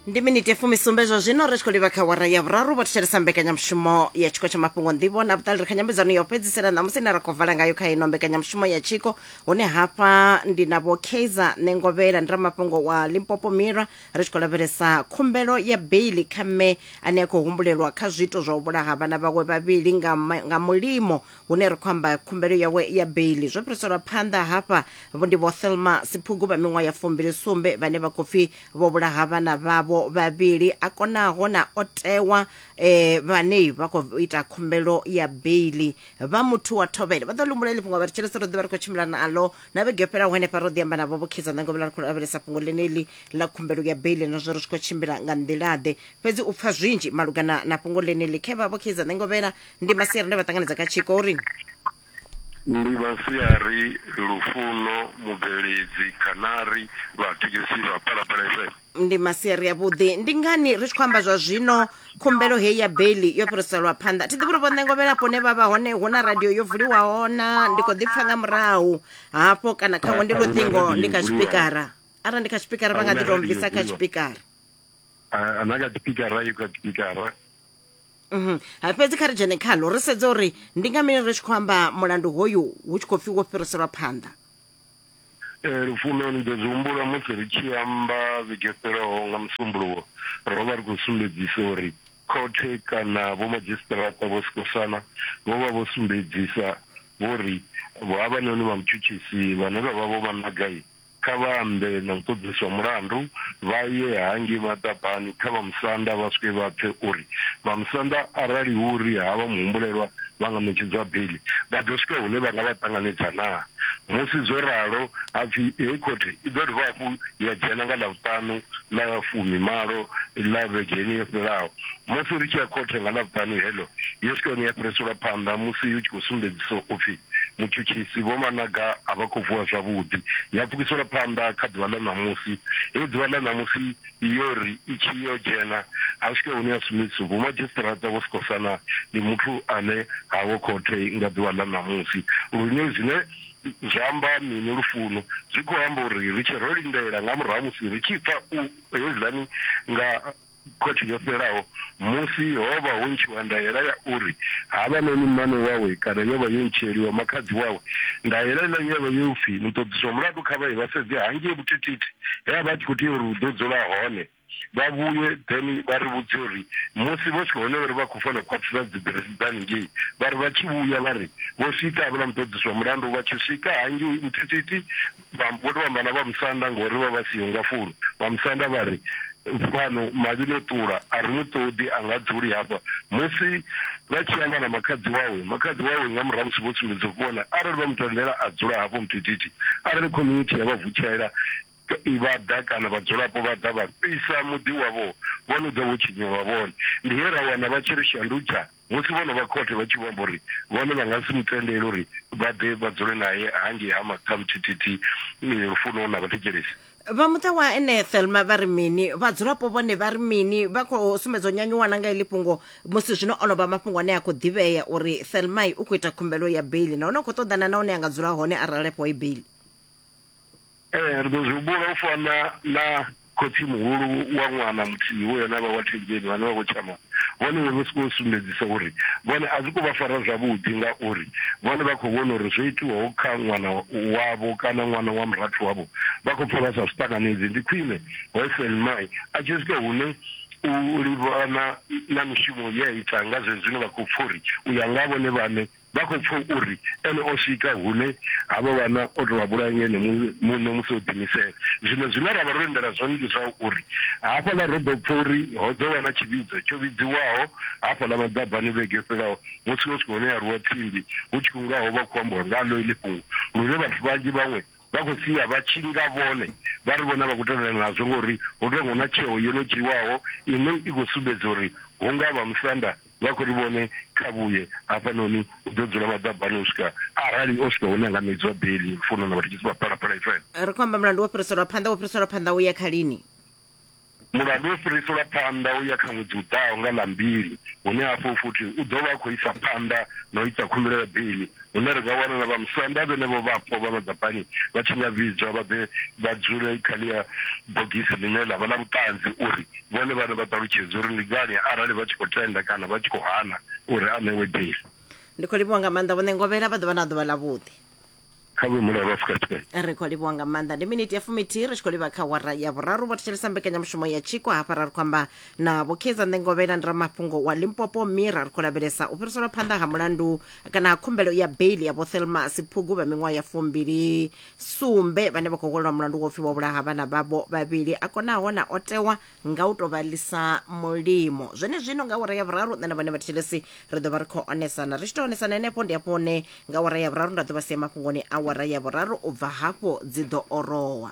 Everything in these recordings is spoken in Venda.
ndi miniti fumisumbe zwa zwino ri tshi khou livha kha wara ya vhuraru vho thetshelesa mbekanyamushumo ya tshiko tsha mafhungo nḓivho na vhuṱali ri kha nyambedzano ya u fhedzisela ṋamusi ine ra khou vala ngayo kha ino mbekanyamushumo ya tshiko hune hafha ndi na vho kaizer nengovhela ndi ramafhungo wa limpopo mira ri tshi khou lavhelesa khumbelo ya beili kha mme ane a khou humbulelwa kha zwiito zwa u vhulaha vhana vhawe vhavhili nga, ma- nga mulimo hune ri khou amba khumbelo yawe ya beili zwo fhiriselwa phanḓa hafha vho ndi vho thelma siphugu vha miṅwaha ya fumbili sumbe vhane vha khou pfi vho vhulaha vhana vhavho vhavhili a konaho na o tewa eh, vhane vha khou ita khumbelo ya beili vha muthu wa thovhele vha ḓo lumbula ili fhungo vha ri tshelese ro ḓivha ri khou tshimbila naḽo na vhege yo fhelaho henefha ro ḓi amba navho vho khidza ṋangovhela ri khou lavhelesa fhungo ḽeneḽi ḽa khumbelo ya beili na zwo ri tshi khou tshimbila nga nḓilaḓe fhedzi u pfa zwinzhi malugana na fhungo ḽeneḽi khevha vho khidza ṋangovhela ndi masiari nda vha ṱanganedza kha tshiko uri ndi masiari lufuno mubveledzi khanari vhathekisi vha phalaphala fm ndi masiari avhuḓi ndi ngani ri tshi khou amba zwa zwino khumbelo heyi ya beli yo fhiriselwa phanḓa thi ḓivhi uri vhonengo vhelapo hune vha vha hone hu na radio yo vuliwaho na ndi khou ḓipfa nga murahu hafho kana khaṅwe ndi luṱingo ndi kha tshipikara arali ndi kha tshipikara vha nga ḓi tou bvisa kha tshipikara na kha tshipikara yo kha tshipikara Mhm. Ha fhedzi kha ri dzhene khalo ri sedze uri ndi nga mini ri tshi khou amba mulandu hoyu hu tshi khou pfi wo fhiriselwa phanḓa. Ee, Lufuno, ni ḓo zwi humbula musi ri tshi amba vhege yo fhelaho nga Musumbuluwo ro vha ri khou sumbedzisa uri khothe kana vhomadzhisiṱiraṱa vho sikosana vho vha vho sumbedzisa vho ri havhanoni vha mutshutshisi vhane vha vha Vho Managai Kha vha ambe na muṱoḓiswa mulandu, vha ye hangei maḓabani kha vha musanda vha swike vha pfe uri vha musanda arali hu uri ha vha muhumbulelwa vha nga ṋetshedzwa beiḽi, vha ḓo swika hune vha nga vha ṱanganedza naa. Musi zwo ralo, ha pfi heyi khothe i ḓo dovha hafhu ya dzhena nga Ḽavhuṱanu ḽa fumimalo ḽa vhege yeneyi yo fhelaho. Musi ri tshi ya khothe nga Ḽavhuṱanu heḽo, yo swika hune ya fhiriselwa phanḓa musi hu tshi khou sumbedzisa u pfi mutshutshisi, Vho Managa a vha khou vuwa zwavhuḓi. Ya pfukisela phanḓa kha ḓuvha ḽa ṋamusi. Hei ḓuvha ḽa ṋamusi yo ri i tshi yo dzhena, ha swika hune ya sumbedzisa Vho Madzhisiṱiraṱa vho Sikhosana ndi muthu ane ha ho khothe nga ḓuvha ḽa ṋamusi. Lune zwine zwa amba mini lufuno? Zwi khou amba uri ri tshe ro lindela nga murahu ha musi ri tshi pfa u hezwiḽani nga. Khothe yo fhelaho, musi ho vha ho ntshiwa ndaela ya uri havhanoni mmane wawe kana yo vha yo ntshieliwa makhadzi wawe, ndaela ila ye ya vha ye u pfi muṱoḓisi wa mulandu kha vha ye vha sedze hangei Vhutititi he a vha a tshi khou tea uri hu ḓo dzula hone, vha vhuye then vha ri vhudze uri musi vho swika hone uri vha khou fanela u khwaṱhisa dziḓiresi dza haningei, vha ri vha tshi vhuya vha ri vho swika havhala muṱoḓisi wa mulandu vha tshi swika hangei Vhutititi Vha mbo ḓi vha amba na vha musanda ngauri vha vha siho nga fhulu. Vha musanda vha ri, Fhano mavhi no ṱula, a ri mu ṱoḓi, a nga dzuli hafha. Musi vha tshi amba na makhadzi wawe, makhadzi wawe nga murahu ha musi vho sumbedza u vhona, arali vha mu tendela a dzula hafho muthithi. Arali community ya vha vutshela vha ḓa kana vhadzulapo vha ḓa vha fhisa muḓi wavho, vho no ḓa vho tshinyelwa vhone. Ndi he ra wana vha tshi ri shandutshani. Musi vhono vha khothe vha tshi vho amba uri vhone vha nga si mu tendele uri vha ḓe vha dzule nae hangei ha Maṱhamuthithithi Lufuno na Vhathetshelesi. Vha muṱa wa ene Thelma vha ri mini? Vhadzulapo vhone vha ri mini? Vha khou sumbedza u nyanyuwa na nga iḽi fhungo musi zwino o no vha mafhungo ane a khou ḓivhea uri Thelma u khou ita khumbelo ya beiḽi nahone u khou ṱoḓana na hune a nga dzula hone arali a fhiwa i beiḽi. Ee, ri ḓo zwi humbula u fana na khotsi-muhulu wa ṅwana muthihi we ene a vha wa thembeni vhane vha khou tshama vhone vho sokou u sumbedzisa uri vhone a zwi khou vha fara zwavhuḓi ngauri vhone vha khou vhona uri zwo itwaho kha ṅwana wavho kana ṅwana wa murathu wavho vha khou pfa vha sa zwi ṱanganedzi. Ndi khwine Wessel Mae a tshi swika hune u livhana na mishumo ye a ita nga zwenezwino vha khou pfa uri u ya nga ha vhone vhaṋe, Vha khou pfa uri ene o swika hune ha vha vhana o tou vha vhulaya nga ene muṋe musi o ḓiimisela. Zwino zwine ra vha ro lindela zwone ndi zwa uri hafhaḽa ro ḓo pfa uri ho ḓo vha na tshivhidzo tsho vhidziwaho hafhaḽa maḓabani vhege yo fhelaho musi ho swika hune ha rwiwa tsimbi hu tshi khou nga ho vha khou ambiwa ngaḽo iḽi fhungo lune vhathu vhanzhi vhaṅwe vha khou sia vha tshi nga vhone vha ri vhone a vha khou tendelana nazwo ngauri hu tou nga hu na tsheo yo no dzhiiwaho ine i khou sumbedza uri hu nga vha musanda Vha khou ri vhone kha vhuye hafhanoni u ḓo dzula maḓabani u swika arali o swika hune a nga ṋedziwa beli. Lufuno na vhathetshelesi vha Phalaphala FM. Ri khou amba mulandu wo fhiriselwa phanḓa, wo fhiriselwa phanḓa u ya kha lini? Mulandu wo fhiriselwa phanḓa u ya kha ṅwedzi u ḓaho nga ḽa mbili, hune hafho futhi u ḓo vha a khou isa phanḓa na u ita khumbelo ya beli hune ra nga wana na vhamusanda vhenevho vhapo vha Vhagapani vha tshi nga vhidzwa vha ḓe vha dzule kha ḽia bogisi ḽine ḽa vha ḽa vhuṱanzi uri vhone vhaṋe vha ṱalutshedze uri ndi ngani arali vha tshi khou tenda kana vha tshi khou hana uri a ṋewe bisi. Ndi khou livhuwa nga maanḓa Vho Ṋengovhela, vha ḓo vha na ḓuvha ḽavhuḓi. Kha vhuimo la Afrika Tshipembe. Ri khou livhuwa nga maanḓa. Ndi miniti ya fumithihi ri tshi khou livha kha wara ya vhuraru vho thetshelesa mbekanyamushumo ya tshiko hafha ra ri khou amba na Vho Kaizer Ṋengovhela ndi ramafhungo wa Limpopo Mira ri khou lavhelesa u fhiriselwa phanḓa ha mulandu kana khumbelo ya beili ya vho thelmas phugu vha miṅwaha ya fumbili sumbe vhane vha khou hwelelwa mulandu wa upfi vha vhulaha vhana vhavho vhavhili a konaho na o tewa nga u tou vha lisa mulimo zwene zwino nga awara ya vhuraru nṋe na vhone vhathetshelesi ri ḓo vha ri khou onesana ri tshi tou onesana henefho ndi hafho hune nga awara ya vhuraru nda ḓo vha sia mafhungoni awara ya vhuraru u bva hafho dzi ḓo orowa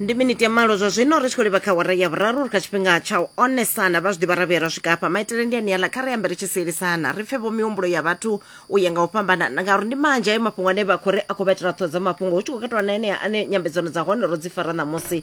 ndi miniti ya malo zwa zwino ri tshi khou livha kha wara ya vhuraru ri kha tshifhinga tsha u onesana vha zwi ḓivha ra vhuya ra swika hafha maitele ndi aniala kha ri ambe ri tshi sielisana ri pfe vho mihumbulo ya vhathu u ya nga u fhambanana ngauri ndi manzhi ayo mafhungo ane vha khou ri a khou vha itela ṱhoho dza mafhungo hu tshi khou katelwa na enea ane nyambedzano dza hone ro dzi fara ṋamusi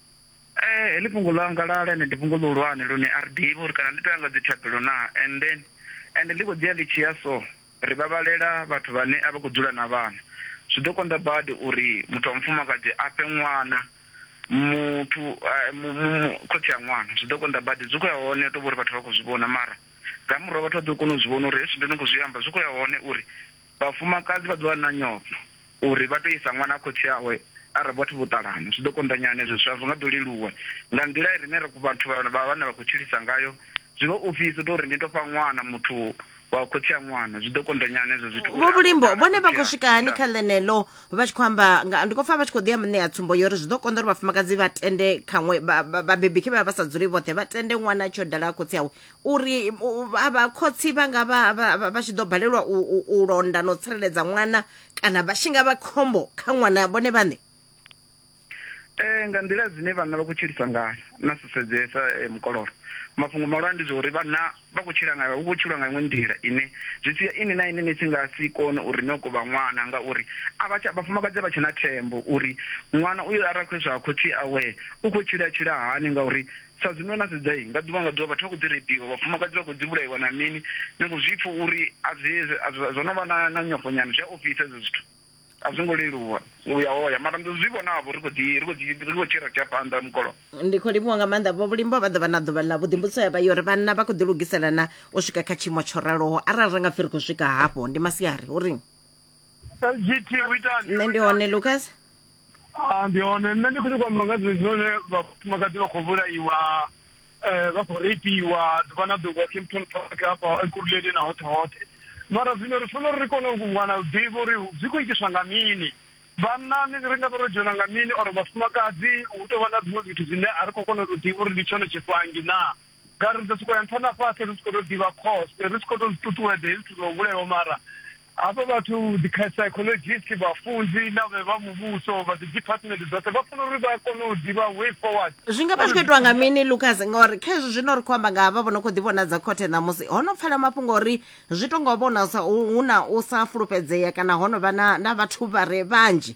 Heḽi fhungo ḽa ngalala ende ndi fhungo ḽihulwane lune a ri ḓivhi uri kana ḽi tou ya nga dzi thabelo naa and then ende ḽi khou ḓi ya ḽi tshi ya so ri vhavhalela vhathu vhane a vha khou dzula na vhana. Zwi ḓo konḓa badi uri muthu wa mufumakadzi a fhe ṅwana muthu mu mu khotsi a ṅwana zwi ḓo konḓa badi. Zwi khou ya hone hu tou vha uri vhathu vha khou zwi vhona mara nga murahu vhathu vha ḓo kona u zwi vhona uri hezwi zwine nda khou zwi amba zwi khou ya hone uri Vhafumakadzi vha ḓo vha na nyofho uri vha tou isa ṅwana ha khotsi awe arali vhathu vho ṱalana. Zwi ḓo konḓa nyana hezwo zwithu, a zwo nga ḓo leluwa. Nga nḓila i rine vhathu vha vha vhana vha khou tshilisa ngayo, zwi vha ofhisa u tou ri ni tou fha ṅwana muthu wa khotsi a ṅwana. Zwi ḓo konḓa nyana hezwo zwithu. Vho Vhulimbo vhone vha khou swika hani kha ḽeneḽo vha tshi khou amba nga ndi khou pfa vha tshi khou ḓi ya muṋe ya tsumbo yori zwi ḓo konḓa uri vhafumakadzi vha tende khaṅwe vhabebi khe vha vha vha sa dzuli vhoṱhe vha tende ṅwana a tshi yo dala khotsi awe uri vhakhotsi vha nga vha vha tshi ḓo balelwa u londa na u tsireledza ṅwana kana vha tshi nga vha khombo kha ṅwana vhone vhaṋe eh nga nḓila dzine vhanna vha khou tshilisa ngayo na sesedzesa eh, mukololo mafhungo malwa ndi zwa uri vhanna vha khou tshila ngayo hu khou tshilwa nga iṅwe nḓila ine zwi sia ini na ine ni si nga si kone uri ni okovha ṅwana ngauri a vha vhafumakadzi a vha tshe na thembo uri ṅwana uyo arali khou iswa khotsi awe u khou tshila tshila hani ngauri Sa zwino na sedza, nga ḓuvha nga ḓuvha vhathu vha khou ḓi reipiwa, vhafumakadzi vha khou dzi vhulaiwa na mini. Ni khou zwi pfa uri a zwi, zwo no vha na, na nyofho nyana. Zwi a ofhisa hezwo zwithu. A zwo ngo leluwa u ya hoya, mara ndi zwi vhonavho, ri khou ḓi, ri khou ḓi, ri khou tshira tshi ya phanḓa mukololo. Ndi khou livhuwa nga maanḓa vho Vhulimbo, vha ḓo vha na ḓuvha ḽa vhuḓi. Mbudziso ya vha yo ri, Vhanna vha khou ḓilugisela na u swika kha tshiimo tsho raloho? Arali ra nga pfi ri khou swika hafho, ndi masiari. Ho ri. lgt uitani nṋe ndi hone lucas Ah, ndi hone nṋe ndi khou nyakwa amba nga zwithu zwine vhafumakadzi vha khou vhulaiwa eh, vha khou reipiwa ḓuvha na ḓuvha kimpton park hafha ekuruleni na hoṱhe hoṱhe mara zwino ri funa uri ri kone u wana u ḓivha uri zwi khou itiswa nga mini vhannani ri nga vha ro dzhena nga mini or vhafumakadzi hu tou vha na zwiṅwe zwithu zwine a ri khou kona u tou ḓivha uri ndi tshone tshifhangi naa Nga ri ḓo sokou ya nṱha na fhasi ri si khou tou ḓivha khoste, ri si khou tou zwi ṱuṱuwedza hezwi zwithu zwa u vhulaiwa. Mara hafha vhathu, dzi psychologist, vhafunzi na vhe vha muvhuso vha dzi department dzoṱhe vha funa uri vha kone u ḓivha way forward. Zwi nga vha zwi khou itiwa nga mini Lucas ngori kha hezwi zwino ri khou amba nga havha vho no khou ḓivhonadza khothe ṋamusi ho no pfala mafhungo uri zwi tou nga u vhona sa hu na u sa fulufhedzea kana ho no vha na vhathu vha re vhanzhi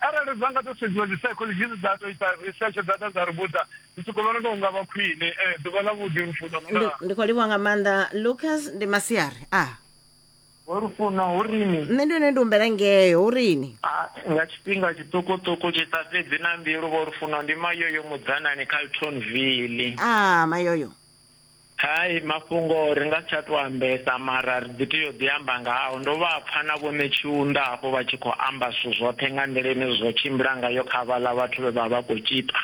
Arali dza nga tou sedziwa dzi psychologist dza tou ita research dza ḓa dza ri vhudza ndi soko vhona nga unga vha khwine eh, ḓuvha ḽa vhuḓi lufuno ndi, nga ndi khou livhuwa nga maanḓa lucas ndi masiari a Ho lufuno hu rini? nṋe ndi hone ndi humbela ngeo hu rini Ah, nga tshifhinga tshiṱukuṱuku tshi sa fhedzi na mbilu vho lufuno ndi mayoyo mudzanani Carltonville. a mayoyo Hai, mafhungo ri nga si tsha tou ambesa mara ri ḓi tea u ḓi amba ngao. Ndo vha pfa na vhoṋe Tshiunda hafho vha tshi khou amba zwithu zwoṱhe nga nḓila ine zwa tshimbila ngayo kha vhaḽa vhathu vhe vha vha khou tzhipa.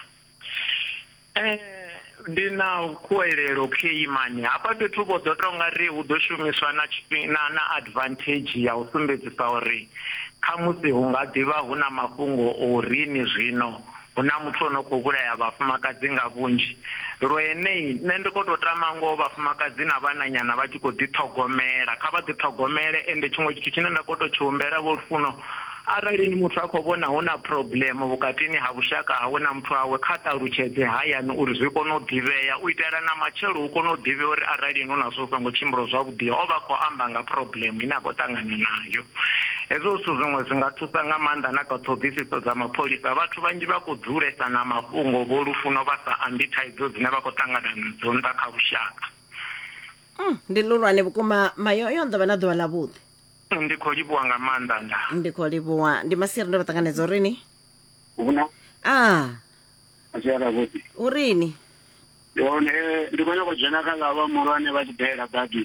Ndi na khuwelelo khei mani, hafha fhethu vho ḓo tou nga ri hu ḓo shumiswa na na na advantage ya u sumbedzisa uri khamusi hu nga ḓi vha hu na mafhungo o ri ni zwino. Hu na muthu o no khou vhulaya vhafumakadzi nga vhunzhi lwenei. Nṋe ndi khou tou tama ngoho vhafumakadzi na vhananyana vha tshi khou ḓiṱhogomela, kha vha ḓiṱhogomele. Ende tshiṅwe tshithu tshine nda khou tou tshi humbela Vho Lufuno, arali ni muthu a khou vhona hu na phurobuḽemo vhukatini ha vhushaka hawe na muthu wawe, kha ṱalutshedze hayani uri zwi kone u ḓivhea. U itela na matshelo hu kone u ḓivhea uri aralini hu na zwo songo tshimbilo zwavhuḓi, o vha a khou amba nga phurobuḽemo ine a khou ṱangana nayo. Hezwo zwithu zwiṅwe zwi nga thusa nga maanḓa na kha ṱhoḓisiso dza mapholisa. Vhathu vhanzhi vha khou dzulesa na mafhungo vho lufuno vha sa ambi thaidzo dzine vha khou ṱangana nadzo nnḓa kha lushaka. Mm, ndi luhulwane vhukuma mayoyo ndo vha na ḓuvha ḽa vhuḓi Ndi khou livhuwa nga maanḓa nda. ndi khou livhuwa ndi masiri ndo vha ṱanganedza urini Huna a asiara vhuḓi. urini Yone ndi khou nyaka u dzhena kha lava muhulwane vha tshi dalela badi.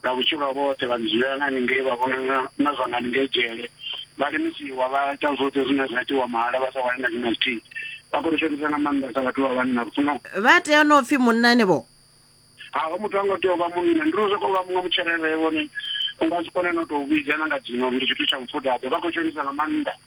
Nga vhutshilo havho hoṱhe vha ḓi dzulela nga haningei, vha vhona na, na zwa nga haningei dzhele. Vha lemisiwa, vha ita zwoṱhe zwine zwa itiwa mahala, vha sa wani na tshina tshithihi. Vha khou ri shonisa nga maanḓa sa vhathu vha vhanna, ri funa. Vha tea u no pfi munnani vho? Ha, ho muthu ha ngo tea u vha munna, ndi ri u sokou vha muṅwe mutsherevhevho, ni, u nga si kone no tou vhidza na nga dzina uri ndi tshithu tsha mufudaḓe. Vha khou shonisa nga maanḓa.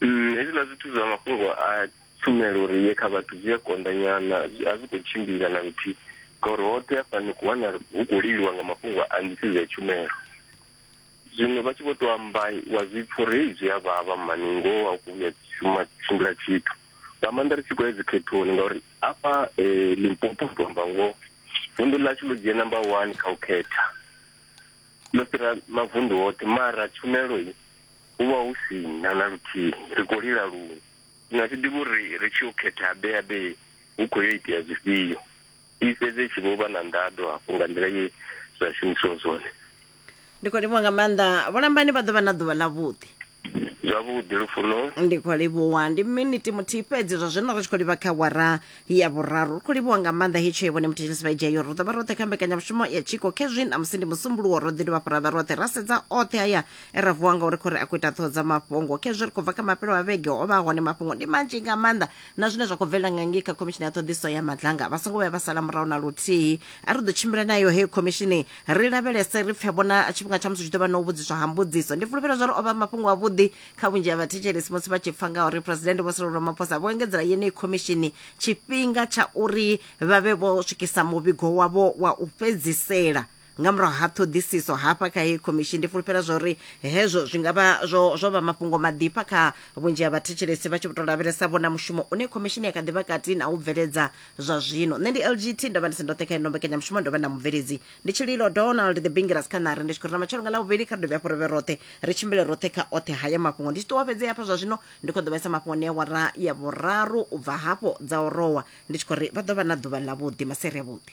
Mm, hezwiḽa zwithu zwa mafhungo a tshumelo uri ye kha vhathu zwi a konḓanyana a zwi khou tshimbila na luthihi ngauri hoṱhe hafha ni khou wana hu khou liliwa nga mafhungo a nḓisedzo ya tshumelo zwino vha tshi vho tou amba wa zwi pfa uri hei zwi a vhavha mani ngoho a khou vhuya shuma tshimbila tshithu nga maanḓa ri tshi khou ya dzikhethoni ngauri afha eh, limpopo tou amba ngoho vunḓu ḽashu ḽo dzhia number one kha u khetha ḽo fhira mavunḓu hoṱhe mara tshumelo i hu vha hu si na na luthihi ri khou lila luṅwe ndi nga si ḓivhi uri ri tshi yo khetha habe habe hu khou yo itea zwifhio i fhedze tshi vho vha na nḓaḓo hafho nga nḓila ye zwa shumisiwa zwone ndi khou livhuwa nga maanḓa vholambani vha ḓo vha na ḓuvha ḽavhuḓi zwavhuḓi lufuno ndi khou livhuwa ndi miniti muthihi fhedzi zwa zwino ri tshi khou livha kha wara ya vhuraru ri khou livhuwa nga maanḓa hetsho yevhone muthetshelesi vha idzheyo ro ḓo vha roṱhe kha mbekanyamushumo ya tshiko khezwi namusi ndi musumbuluwo ro ḓi dovha fhura vha roṱhe ra sedza oṱhe haya e ra vuwa ngauri khou ri a khou ita ṱhoho dza mafhungo khezwi ri khou bva kha mafhelo a vhege o vha hone mafhungo ndi manzhi nga maanḓa na zwine zwa khou bvelela nga ngei kha khomishini ya ṱhoḓiso ya madlanga vha songo vhuya vha sala murahu na luthihi a ri ḓo tshimbila nayo heyo khomishini ri lavhelese ri pfe vhona tshifhinga tsha musi tshi ḓo vha na u vhudziswa ha mbudziso ndi fulufhela zwa uri o vha mafhungo avhuḓi kha vhunzhi ha vhathetshelesi musi vha tshi pfa nga uri presidente vho sirolo maphosa vho engedzela yeneyi khomishini tshifhinga tsha uri vha vhe vho swikisa muvhigo wavho wa u fhedzisela Nga murahu ha ṱhoḓisiso hafha kha heyi khomishini, ndi fulufhela zwa uri hezwo zwi nga vha zwo, zwo vha mafhungo maḓifha kha vhunzhi ha vhathetshelesi vha tshi vho tou lavhelesa vhona mushumo une khomishini ya kha ḓi vha kati na u bveledza zwa zwino. Nṋe ndi LGT, ndo vha ndi si ndoṱhe kha ino mbekanyamushumo, ndo vha na mubveledzi ndi Tshililo Donald The Bingiras kha ṋari, ndi tshi khou ri na matshelo nga Ḽavhuvhili kha ri dovhe hafhu ri vhe roṱhe, ri tshimbile roṱhe kha oṱhe haya mafhungo. Ndi tshi ṱuwa fhedzi hafha zwa zwino, ndi khou ḓo vha isa mafhungoni a awara ya vhuraru u bva hafho dza orowa, ndi tshi khou ri vha ḓo vha na ḓuvha ḽavhuḓi, maseri avhuḓi.